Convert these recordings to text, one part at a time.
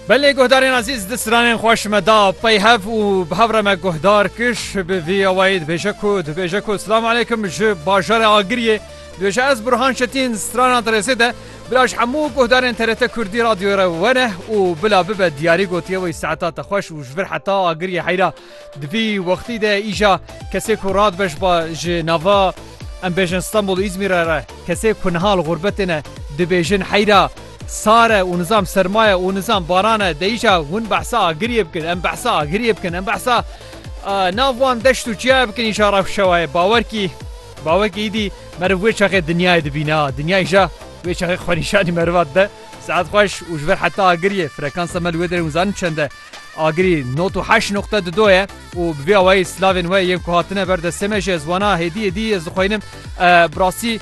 Belê guhdarên ezîz di stranên xwe ji me da peyhev û bi hev re me guhdar kir bi vî awayî dibêje ku dibêje ku silam aleykum ji bajarê Agiriyê dibêje ez Burhan Çetin strana Dirêzê de bila ji hemû guhdarên TRT Kurdî radyoyê re wene û bila bibe diyarî gotiye wî saeta te xweş û ji vir heta Agiriyê heyra Di vî wextî de îja kesê ku radibeş ba ji nava em bêjin Stenbol û Îzmîre re, kesê ku niha li xûrbetê ne dibêjin heyra sar e û nizam serma ye û nizam baran e, deîja hûn behsa agiriyê bikin, em behsa agiriyê bikin, em behsa nav wan deşt û çiyayê bikin îja rewşewayê bawer kî bawer kî îdî meriv wê çaxê dinyayê dibîne a dinya îja wê çaxê xwenîşanî meriva dide. Seat xweş û ji ber heta agiriyê frekansa me li wê derê hûn zanin çend e. Agirî not û heşt noqte di do ye û bi vê awayî silavên we yên ku hatine ber destê me jî ez wana hêdî hêdî ez dixweynim bi rastî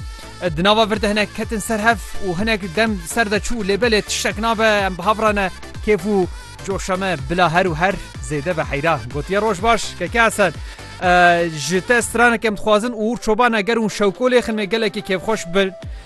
di nava vir de hinek ketin ser hev û hinek dem ser de çû lê belê tiştek nabe em bi hav re ne kêf û coşa me bila her û her zêde be heyra gotiye roj baş keke esen ji te stranek em dixwazin û çoban eger hûn şewkolê xinmê gelekî kêfxweş bin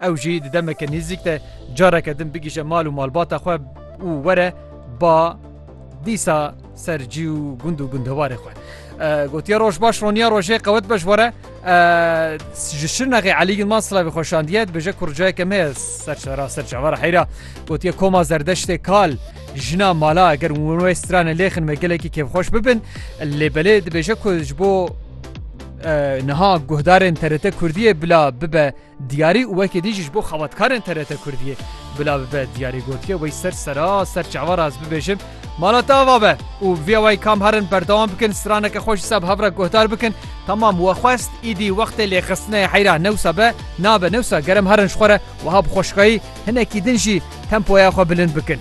Ew jî di demeke nêzîk de careke din bigihîje mal û malbata xwe û were ba dîsa ser cî û gund û gundewarê xwe. Gotiye roj baş roniya rojê qewet be ji were ji şirnexê Elî Yilman Silavê xweşandiye dibêje kurcayeke me ser şera ser çavara heyra gotiye koma zerdeştê kal jina mala eger wê strane lêxin me gelekî kêfxweş bibin lê belê dibêje ku ji bo niha guhdarên TRT Kurdiye bila bibe Diyarî û weke dî jî ji bo xebatkarên TRT Kurdiyê bila bibe. Diyarî gotiye wey ser sera ser çavan ez bibêjim mala te ava be û viya wey kam herin berdewam bikin straneke xwe ji seb hev re guhdar bikin. Tamam we xwest îdî wextê lêxistineyê heyra ne wisa be nabe ne wisa gerem herin ji xwe re wiha bi xweşikayî hinekî din jî tempoya xwe bilind bikin.